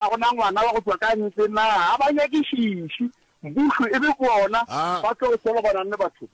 Ga go na ngwana wa go tšwa ka ntle na? Ga ba nyakišiši. Mmušo e be bona ba tlo solo ba nang le batho.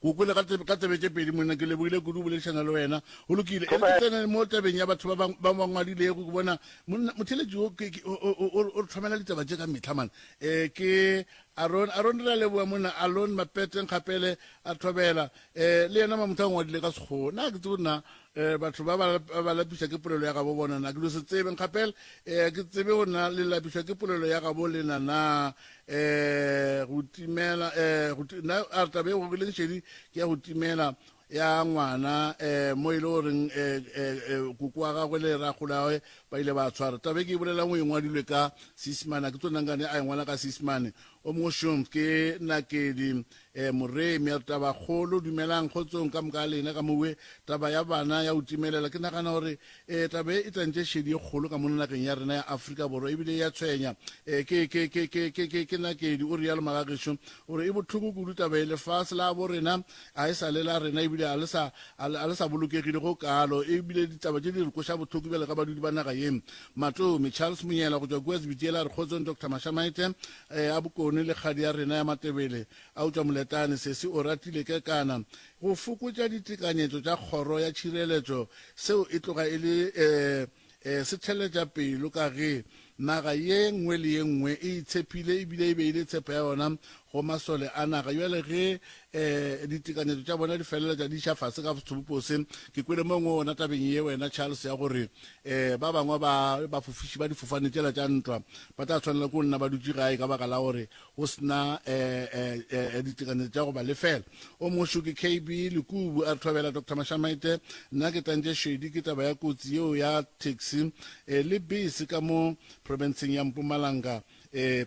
Kukule, ka ka tsebe tše pedi, monna, ke lebogile kudu boledišana le wena. Go lokile, e re ke tsene mo tabeng ya batho ba ba ba ngwadilego ke bona motheletši o ke o re tlhomela ditaba tše ka mehla mane. Eh ke Aron Aron re a leboga monna Alon Mapete Nkgapele a thobela eh le yena mamotho a ngwadile ka Sekgowa. Na ke tsebe na Eh, batho ba ba lapiša ke polelo ya gabo bona na ke lo se tsebe nkgapela eh, ke tsebe go na le lapišwa ke polelo ya gabo lena na eh, go timela eh, go na a re tabe go gileng šedi ke ya go timela ya ngwana eh mo ile e o reng eh, eh, eh kuku wa gagwe le ra golawe ba ile ba tshwara tabe ke bolela ngwe ngwa dile ka sismana ke tsona ngane a ngwana ka sismane o mo shom ke nakedi Ee, Morei, Mr. Tabakgolo, dumelang, kgotsong ka moka lena ka mo we. Taba ya bana ya go timelela, ke nagana gore, ee, taba ye e tantše šedi e kgolo ka mono nageng ya rena ya Afrika Borwa, e bile e a tshwenya. Ee, ke, ke, ke, ke, ke, ke, ke nakedi, o realo Magagešo. O re, E bohloko kudu taba ye. Lefase la bo rena ga e sa le la rena, e bile ga le sa, ga le, ga le sa bolokegile go kaalo. E bile ditaba tše di re koša bohloko bjalo ka badudi ba naga ye. Matomi, Charles Monyela go tšwa kua Zwitielar, kgotsong Doctor Mashamaite, Ee, a Bokone le kgadi ya rena ya Matebele. Eupša Moletane sesi o ratile kekana go fokotša ditekanyetšo tša kgoro ya tšhireletšo, seo e tloga e le ee, ee, setheletša pelo ka ge naga ye nngwe le ye nngwe e itshepile e bile e beile tshepo ya yona go masole a naga. Bjale ge um ditekanyetso tša bona di feleletša di iša fase ka sebopo se ke kwele mongwe ona tabeng ye wena charles ya gore um ba bangwe ba bafofiši ba difofane tšela tša ntwa ba tla tshwanela ke go nna ba dutše gae ka baka la gore go sena um ditekanyetso tša go ba lefela o mošo ke kb lekubu a re thobela dr mashamaite nna ke tantše šedi ke taba ya kotsi yeo ya taxi um le bese ka mo provinceng ya mpumalanga um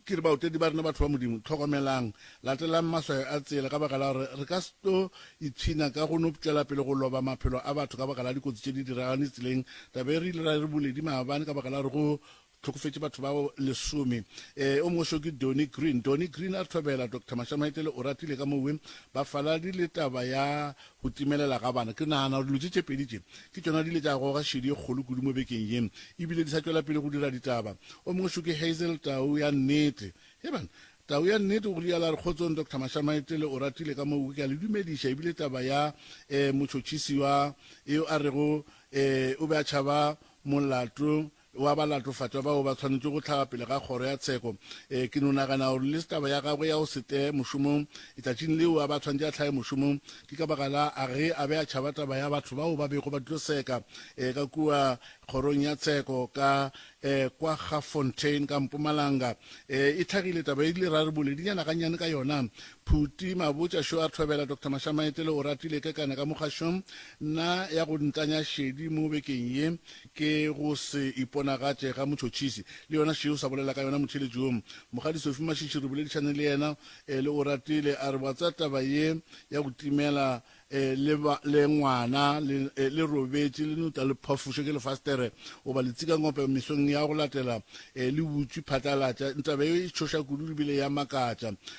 Ke re, Baotedi ba rena, batho ba Modimo, hlokomelang! Latelang maswayo a tsela, ka baka la gore re ka se tlo ipshina ka go no tšwela pele go loba maphelo a batho ka baka la dikotsi tše di diraganetše tseleng. Taba ye re ile ra e re boledi maabane ka baka la gore go hlokofetše batho ba lesome. E, o mongwe seo ke Donnie Green. Donnie Green a re thobela, Doctor Mashamaetele Oratile ka mowe, bafaladi le taba ya Go timelela ga bana. Ke nagana gore dilo tše tše pedi tše ke tšona di ile tša goga šedi e kgolo kudu mo bekeng ye e bile di sa tšwela pele go dira ditaba. O mong šo ke Hazel, tau ya nnete. Hei bana, tau ya nnete, o rialo a re, Kgotsong, Doctor Mashamaetele, o ratile ka moo ke a le dumediša, e bile taba ya, eh, motšhotšhisi wa, eo a rego, eh, o be a tšhaba molato, wa ba latofatša bao ba swanetše go hlaga pele ga kgoro ya tsheko. Ee, ke no nagana gore le se taba ya gagwe ya go se tle mošomong letšatšing leo a ba swanetše a hlage mošomong. Ke ka baka la a ge a be a tšhaba taba ya batho bao ba bego ba tlo seka ee ka kua kgorong ya tsheko ka ee kwa Gafontein ka mpumalanga. Ee, e hlagile taba e rile ra re boledinyana gannyane ka yona. Phuti Mabotša šo a thobela Doctor Mashamaetele Oratile kekana ka mo kgašong na ya go ntanya šedi mo bekeng ye. Ke go se iponagatše ga motšhotšhisi. Le yona Sheo sa bolela ka yona motheeletši wo. Mokgadi Sophie Mashishi re boledišane le yena eh, le Oratile a re wa tseba taba ye ya go timela eh, le, ba, le ngwana le, eh, le robetše le nota le phafošwe ke lefastere goba letsikangope mesong ya go latela eh, le butšwi phatlalatša. Taba ye e tšhoša kudu le bile ya makatša.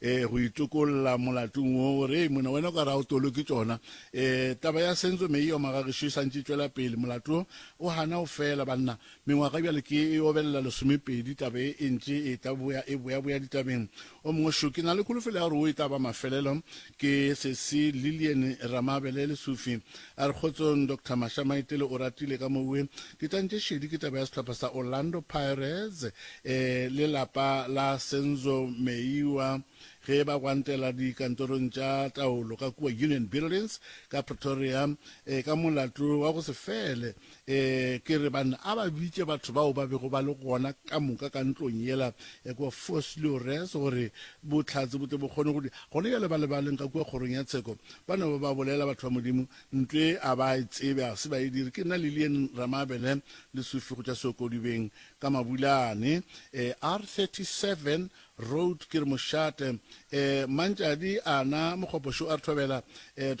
e go itokolla molatong wo gore mona wena o ka ra o tolo ke tšona e taba ya senzo me e oma ga gešo e santše tšwela pele molato o hana o fela banna mengwaga bjale ke e obelela lesomepedi taba e e ntše e taboya e boyaboya ditabeng o mongwe šo ke na le kholofelo ya gore o e taba mafelelo ke sesi lillian ramabele lesufi A re kgotsong Doctor Masha Maitele Oratile ka mowe ke tantše šedi ke taba ya sehlopha sa Orlando Pirates e le lapa la Senzo Meyiwa ge ba gwantela dikantorong tša taolo ka kua Union Buildings ka Pretoria e ka molato wa go se fele Ee, ke re, banna, a ba bitše batho bao ba bego ba le gona ka moka ka ntlong yela ya kua Fosse le Orese, gore Bohlatse bo tle bo kgone go di. Gona bjale ba lebaleng ka kua kgorong ya tsheko, ba no ba ba bolela batho ba Modimo, ntlo ye a ba e tsebe, ga se ba e dire. Ke nna Lillian Ramabele, le Sufi go tša Seokodubeng, ka Mabulane, ee, R 37 Road, ke re, mošate, ee, Mantšadi, ana, Mokgopo šo a re thobela, ee, Doctor.